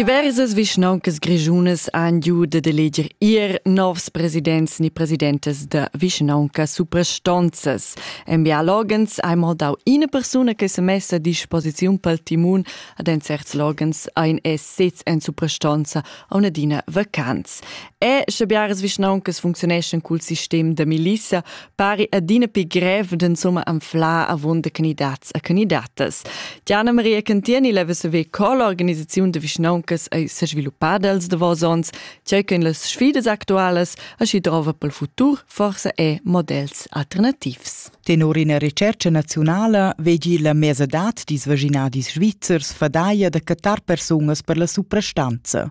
Diversas vischnauncas grischunas han giu dad eleger ir novs presidents ni presidentas da vischnauncas suprastonzas. En bialogens hai mo dau ina persuna che se messa a disposiziun pel timun ad en certs logens ein es sez en suprastonza a adina vacanz. E sche biaras vischnauncas functioneschan cul sistem da milissa, pari adina pi grev d'insumma anflar avon de candidats a candidatas. Diana Maria Cantieni leva saver co l'organisaziun de vischnauncas ei sesviluppada els davos ons, tgei che las sfidas actualas aschi drova pel futur forse è models alternativs. Tenor ina recerca nazionala vegi la mesadad dis vaginadis svizzers fadaia da catar persunas per la suprastanza.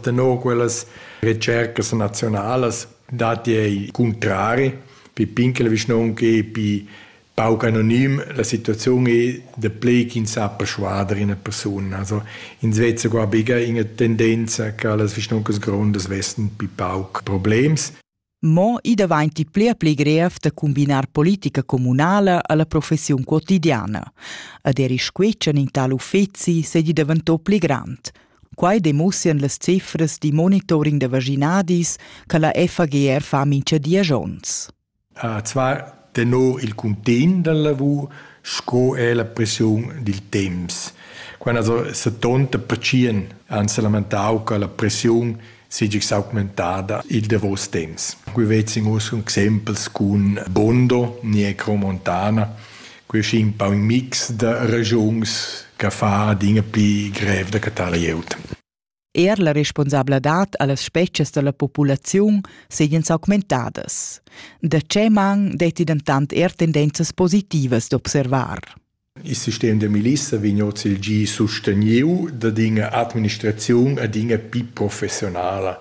Tenor quellas retschercas naziunalas datti ei cuntrari pipin che la vischnaunca ei pi pauc anonim, la situaziun ei da plei ch'ins sa perschuader ina persuna. Also ins vezza qua biga ina tendenza che las vischnauncas grondas vessen pi pauc problems. Mo i davanti pler pli grev da combinar politica communala alla professiun quotidiana. Ad eri squetschen in tal uffeci se di daventò pli grand. Quai demussian las cifras di monitoring da vaginadis che la FAGR fa mincha dies ons. Uh, zwar tenor il cuntegn dalla lavur sco er la pressiun dil temps. Quella setonta pertschien ans lamentau che la pressiun seigi s'augmentada il davos temps. Qui vezzin us exempels cun Bondo, Niecro Montana, qui è un po un mix da ragions che fa adina più grev da catar glieud. Er la responsabladad a las spezias da la populaziun seigien s'augmentadas. Da tge man detti dentant er tendenzas positivas d'observar? Il sistem da milissa vegn oz il gi susteniu dad ina administraziun ad ina pi professionala.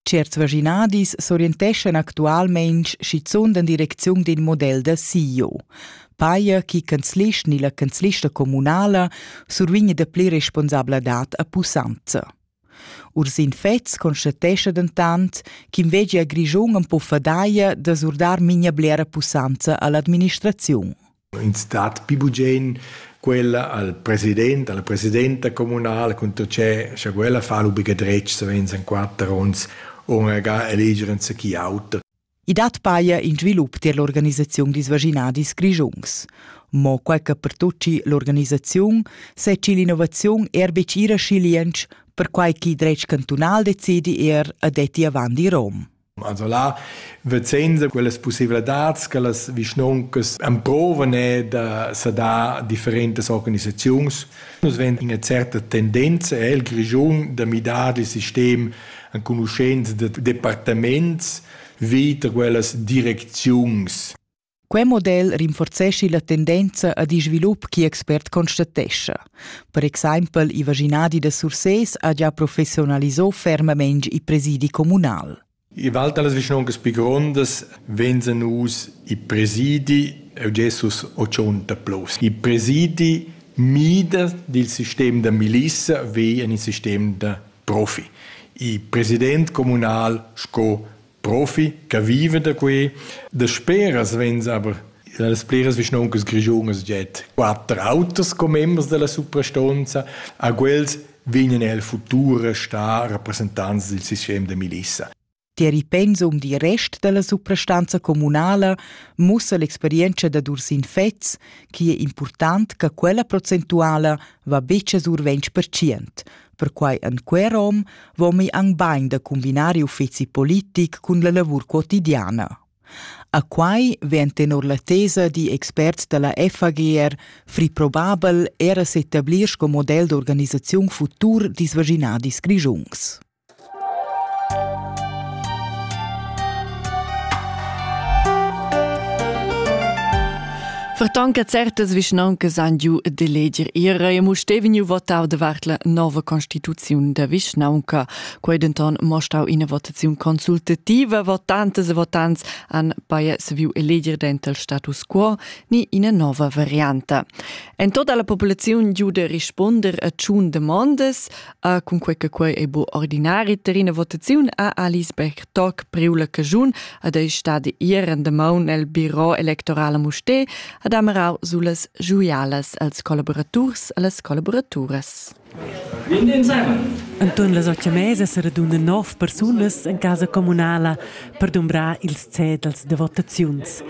Certs vaschinadis s'orienteschan actualmein schizunt en direcziun d'in model da CEO. Paia chi canzlist ni la canzlista communala survigna dapli responsabladad a pussanza. Ursin Fetz constatescha dentant ch'inveglia Grischun am po fadaia da surdar mincha blera pussanza all'administraziun. Ins dat pli bugen quella al president, alla presidenta communala cunter che scha quella fa lu buca dretg savens en quater onns ora ga eleger enzatgi auter. I dat paia in svilup tier l'organisaziun dils vaginadis grischuns. Mo quai che per tutti l'organisaziun seci l'innovaziun er betg ira schiliensch, perquai ch'il dretg cantunal decidi er a detti avant i Rom. Also là vezenza quellas pussevladads che las vischnoncas emprovan è da sadar differentas organisaziuns. Nus vegn ina certa tendenza el Grischun da midar il sistem enconuschents de departaments vita quellas direcziuns. Quei model rinforzeschi la tendenza ad in svilup che expert constatescha. Per exempel i vaginadi da Sursés ha già professionalisò fermament i presidi communal. I val talas vischnoncas pi grondas venzan us i presidi e Jesus 80 plus. I presidi mida dil sistem da milissa ve in il sistem da profi. I president comunal sco profi che viva da quei. Dasperas vegns aber las pliras vischnoncas grischunas jet quatter autos come members della suprastonza, a quels vegnan el futur a star rappresentants del sistem de milissa. Tier il pensum dil rest dalla suprastanza communala mussa l'experienza da Dursin Fetz che è important che quella procentuala va betg a sur 20%, Perquai en quei rom vomi ang bain da cumbinar uffeci politic cun la lavur quotidiana. A quai vegn tenor la tesa di experts dalla FAGR free probabel era s'etablir sco model d'organisaziun futur disvaginadis grigiungs. Verton che certas vischnauncas han giu de leger ira e mu steveniu votau davart la nova constituziun da vischnaunca. Quei denton mostau ina votaziun consultativa. Votantes e votants han paia saviu eleger denter il status quo ni ina nova varianta. En tota la populaziun giu de risponder a tschun demondas, Uh, cunquei che quei ei bu ordinari ter ina votaziun ha Alice Berg toc priu la cagiun ad ei stadi ir en de maun el biro electoral a Mustè ad amarau sulas giuialas als collaboraturs e las collaboraturas. Anton las otg mesa se radunan nov persunas en casa comunala per dumbrar ils cedels de votaziuns.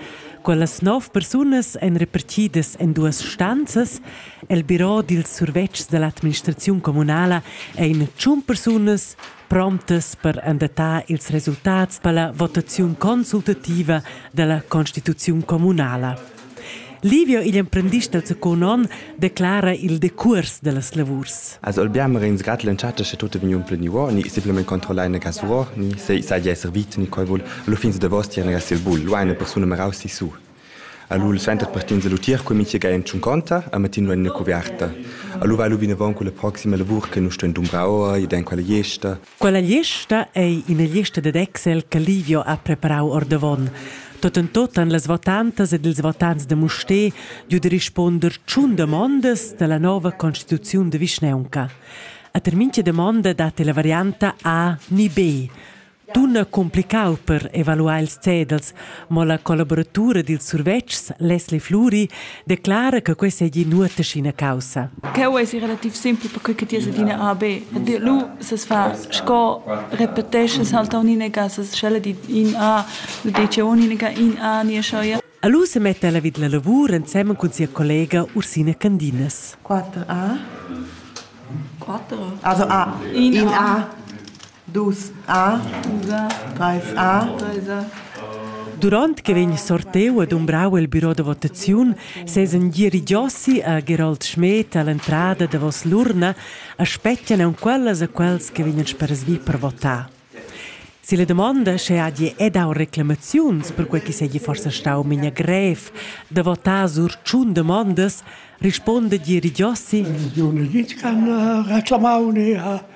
Quellas nov persunas ein repartidas en duas stanzas El biro dils survetschs dall'administraziun communala ein tschun persunas promptas per endatar ils resultats per votaziun consultativa dalla constituziun communala. Livio, igl emprendist del secund onn, declara il decurs dellas lavurs. Also abbiamo ringrato l'entschatta che tutto vegniva plenivo, ni semplicemente controllare una casuror, ni se sai essere vit, ni qual vuol, lo fins de vosti, una gas il bull, lo eine persona merausi su. Alura il center partenza lu tier cun mintga en tschunconta a matin en ina cuverta. Alura va lu vinavon con la proxima lavur che nus stuein dumbrar ora ed en quella gliesta. Quella gliesta ei ina gliesta dad Excel che Livio ha preparau ordavon. Tot en tot han las votantas ed ils votants de Mustér giu de risponder tschun damondas dalla nova constituziun de vischnaunca. A ter mintga damonda dat la varianta A ni B. Dunna complicau per evaluar ils cedels, mo la collaboratura dils survetschs Leslie Fluri declara che quei seigi nuota sc'ina caussa. Cheu eisi relativ simpel perquei che ti es adina AB. E lu ses fa sco repetesce salta un'inega, ses scelle di in A, lu dice un'inega in A, nie scioia. Alu se mette alla vid la lavur ensemen cun sia collega Ursina Candinas. 4A. 4? Also A. In A. Dus A, treis A, treis A. Duront che vegn sorteu e dumbrau il biro da votaziun sesan dirigiossi a Gerold Schmed all'entrada davos l'urna e spetgan aunc quellas e quels che vegnan sperasvi per votar. Si la domanda sche hagi e dau reclamaziuns per quei che segi forsa stau memia grev da votar sur tschun domandas, risponda dirigiossi. Non gli can reclamau ne ha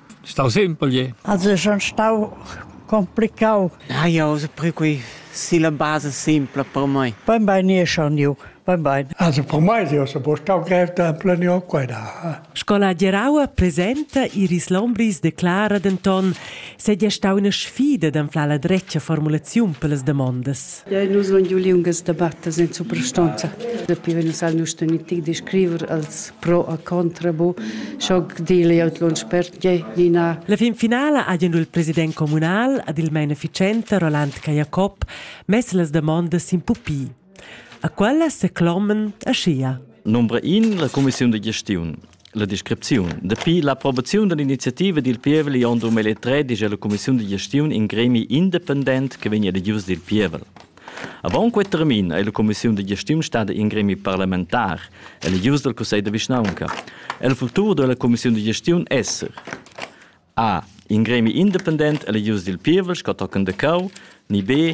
Stau simpel, je. Also schon stau complicau. Ja, ja, also per qui si la base simpla per mai. Ben ben nie schon ju. Ben ben. Also per mai io se po stau grev temple ne ho qua da. Scola Geraua presenta Iris Lombris declara denton se dia stau una sfida d'anflar la dretga formulaziun per las demandas. Nus sun giu liungas debattas in suprastonza. Dapi vegn nus al nostra mitic di scriver als pro a contra bu, scho dil jau lunsch per tgei Nina. La fin finala ha il president communal ad il main efficiente Roland Cajacob mess las demandas in pupi. A quellas se clomen aschia. Number 1 la commissiun de gestiun. La descripziun. Dapi l'approbaziun dall'iniziativa dil pievel igl onn 2003 digia la cumissiun da gestiun in gremi independent che vegn edius dil pievel. Avant quei termin ei la cumissiun da gestiun stada in gremi parlamentar, eligius dal cussegl da vischnaunca. El futur da la cumissiun da gestiun esser A. In gremi independent eligius dil pievel sco tochen de cau, ni B.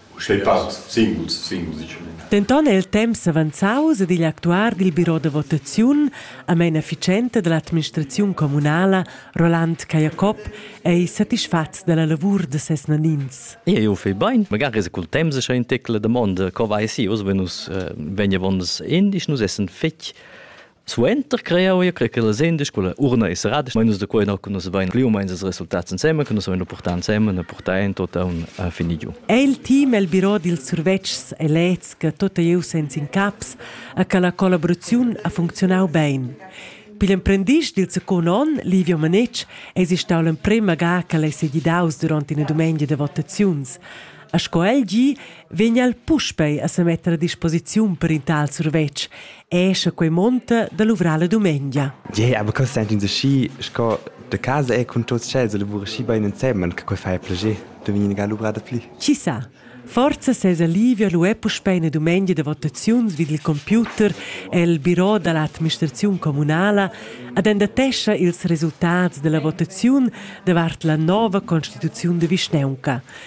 Uschè part singuls, singuls diciuns. Denton è il temps avanzaus ed igl actuar dil biro da votaziun a meina efficienta dall'administraziun communala, Roland Cajacob, ei satisfatgs dalla lavur da ses nanins. Eu fai bain, magari es cul temps cha ün tecla damonda co vai si, uss vegn nus vegn avondas in, isch nus essan fich Suenter creau ia che las endisch quella urna e serada, ma nus da quei no nus vein gliu meins ils resultats ensemen, che nus vein purtà ensemen e purtà en tot aun a fini giu. È il team el biro dils survetschs e leds che tot ei senz in caps a che la collaboraziun ha funzionau bein. Pigl emprendist dil secund onn, Livio Manetsch, eis stau l'emprema ga che el ei segidaus duront ina dumengia de votaziuns. E sco el gi, vegn el puspei a semetter a disposiziun per in tal survetsch, esce quei monta da luvrar la dumengia. Ja, aber questo è un schi, sco de casa è con tutti ch'els lavora schi bene insieme, che quei fa piacere, de venire a luvrar da pli. Chissà. Forza ses alivio lu è puspei una dumengia da votaziun vid il computer el biro dall'administraziun comunala ad endatescha ils resultats della votaziun davart la nova constituziun de Vischneunca.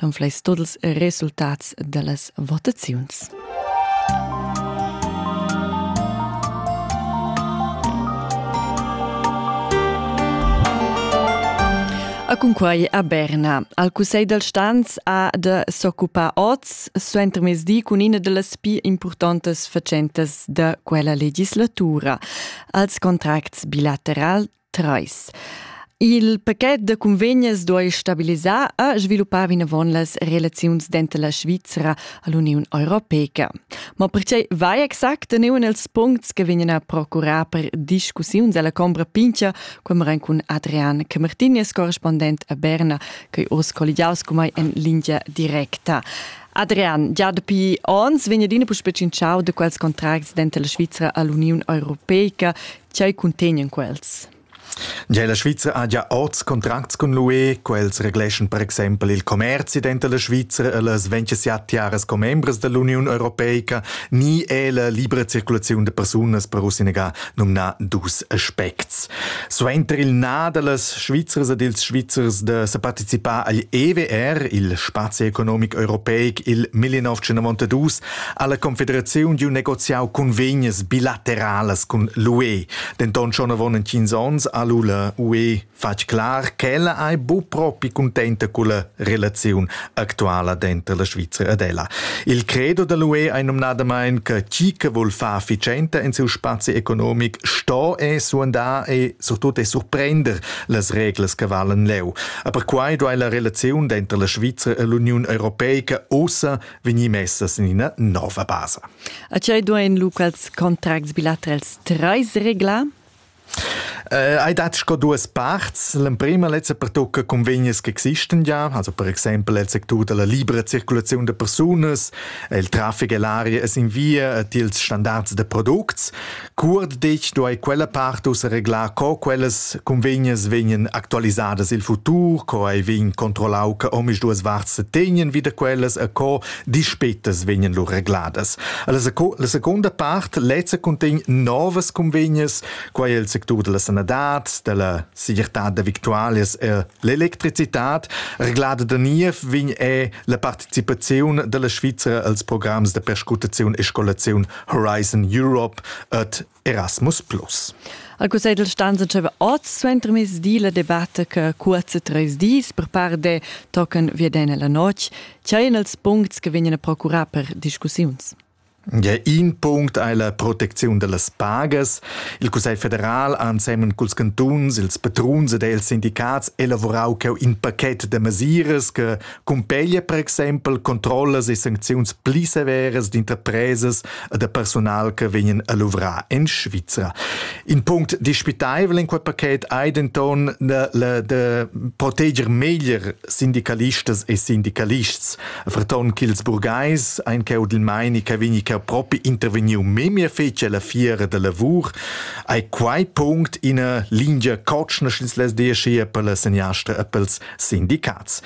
l'unfleis tuts ils resultats dallas votaziuns. A cunquai a Berna. Al Cussegl dal Stanz ha da s'occupar oz suentermezdi cun ina delles più importantes facentas da quella legislatura. Als contracts bilaterali Trais. Il pachet da cunvegnas duai stabilisar e sviluppar vinavon las relaziuns denter la Svizra e l'Uniun Europeca. Ma pertgei vai exact neuan els puncts che vegnan a procurar per discussiuns alla Combra Pincha, quemeren cun Adrian Camartinez, correspondent a Berna, che oz colligiaus come en linea directa. Adrian, già dapi ons vegna adina puspè cinciau da quels contracts denter la Svizra e l'Uniun Europeca Tgei cuntegnan quels? Gia la Svizra ha gia oz contracts cun l'UE. Quels regleschan per exempel il commerzi denter la Svizra e las 27 tiaras commembras dall'Uniun europeica ni è la libra circulaziun da persunas per usinegà numnà dus aspects. Suenter il na dallas Svizras ed ils Svizzers da sa participar agl EWR, il spazi economic europeic, il 1992, ha la Confederaziun giu negoziau cunvegnas bilateralas cun l'UE. Denton schon avon entgins onns ha l'ULA UE fatg clar ch'ella ei bu propi cuntenta culla relaziun actuala denter la Svizra ed ella. Il credo dell'UE ei nomnadamain che chi che vul far efficienta in siu spazi economic sto e suandar e surtut e surprender las reglas che valen leu. Aber quai duai la relaziun denter la Svizra e l'Uniun Europeica ussa vegnir messas in ina nova basa. A tgei duein locals contracts bilaterals treis regla? Äh, hai dat sco duas parts. L'emprima letzte pertocca convegnes che existen ja, also per exempel il sectur della libera circolazione de personas, il traffic e l'aria es in via tiels standards de products. Cuort detg do ei quella part ussa reglar co quellas convegnas vegnan actualisadas il futur, co ei vegn controllau che omisduas varts se tegnen wieder quellas e co dispetas vegnan lur regladas. La, seco la seconda part lezza contegn novas convegnas, quai è il sectur della sanadad, della segirtad da victualias e l'electricitad. Reglada da niev vegn è la participazione della Svizzera als programms de perscutazione e scolazione Horizon Europe et Erasmus Plus. Al Cussegl stanza deva oz suenter mis di la debatta che cuorza treis dis per par de tochen vieden la notg, tscheien els puncts che vegnan a procurar per discussiuns. Ja, in punct è la protezione delle pagas. Il Cussegl federal, ansemmen col cantuns, ils patruns ed els sindicats, elaborau in pacchet de mesiras che cumpeglia per exempel controllas e sancziuns pli severas d'interpresas e da personal che vegnan a luvrar en Svizra. In punct dispitaivel in quel paket ei denton la de proteger meglier sindicalistas e sindicalists, verton ch'ils burgheis ein cheu dil meini che vegni cheu propi intervegniu memia fetg alla fiera da lavur, ei quei punct ina lingia cotschna sch'ins les diascia per la seniastra e pels sindicats.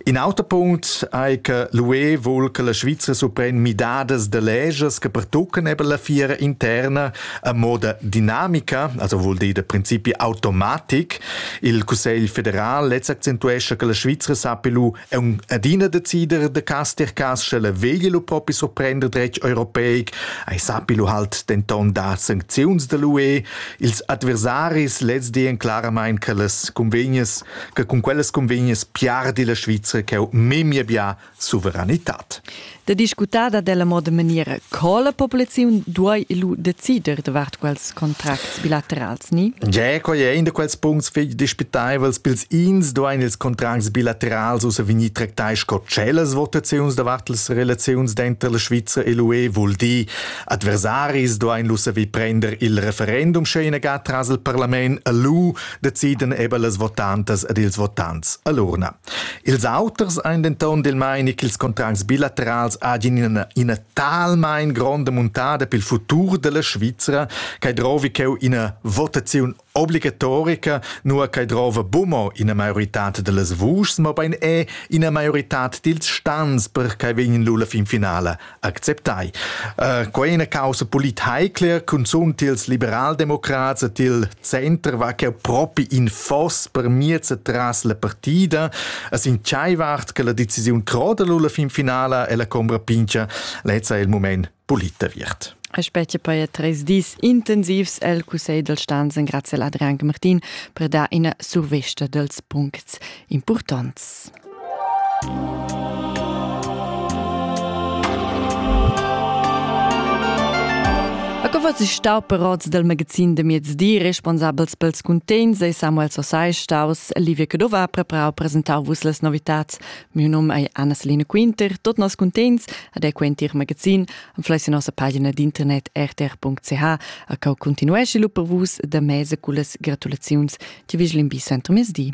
In auter punct ei che l'UE vul che la Svizra supren midadas de leges che pertuccan eben la fiera interna a moda dinamica, also vuol dir de principi automatik. Il Cussegl federal letz accentuesce che la Svizra sappi lu un adina decider de caster cas sche la vegli lu propi soprender dretg europeic, ei sappi lu halt denton da sancziuns de l'UE. Ils adversaris lez di en claramain che las convegnes che cun quellas convegnas piardi la Svizra ch'eu memia bia suveranitad. Da discutar da della moda maniera co la populaziun duai lu decider davart quels contracts bilaterals ni? Ja, quai è in da quels puncts fich dispitaivels pils ins duain ils contracts bilaterals ussa vegnir tractai sco tschellas votaziuns davart las relaziuns denter la Svizra e l'UE vul dir adversaris duain lu saver prender il referendum sche in aga tras il parlament a lu decidan eben las votantas ed ils votants a l'urna. Ils auters ein denton del meini ch'ils contracts bilaterals hagin ina, ina talmein gronda muntada pel futur della Svizzera, che drovi cheu ina votazione obligatorica, nur che drova bumo ina maiorità dellas vuschs, ma bein è ina maiorità dils stans per che vegn l'ulla fin finale acceptai. Uh, quei è una causa politeicler, cunzunt ils liberaldemocrats et il center va che propi in foss per miez tras la partida, es in tschaiwart che la decisiun croda la fin finala e la combra pincha lezza il moment polita wird. Aspecti per ja tres dis intensivs el Cussegl del Stanzen grazie ad Adrian Martin per dar ina survesta dels puncts importants. A co was ich starperats del Magazin de Miedsdi, responsabels pels cuntegns e Samuel Sosai staus Livia Cadova preparau presentau vus les novitats. Miu num ei Anna-Selina Quinter. Tot nos cuntegns ad e quentir magazin am fleis in nossa pagina d'internet rtr.ch a cau continuesci lu per vus da mese cullas gratulaziuns ti vigilin bi sempre miezdi.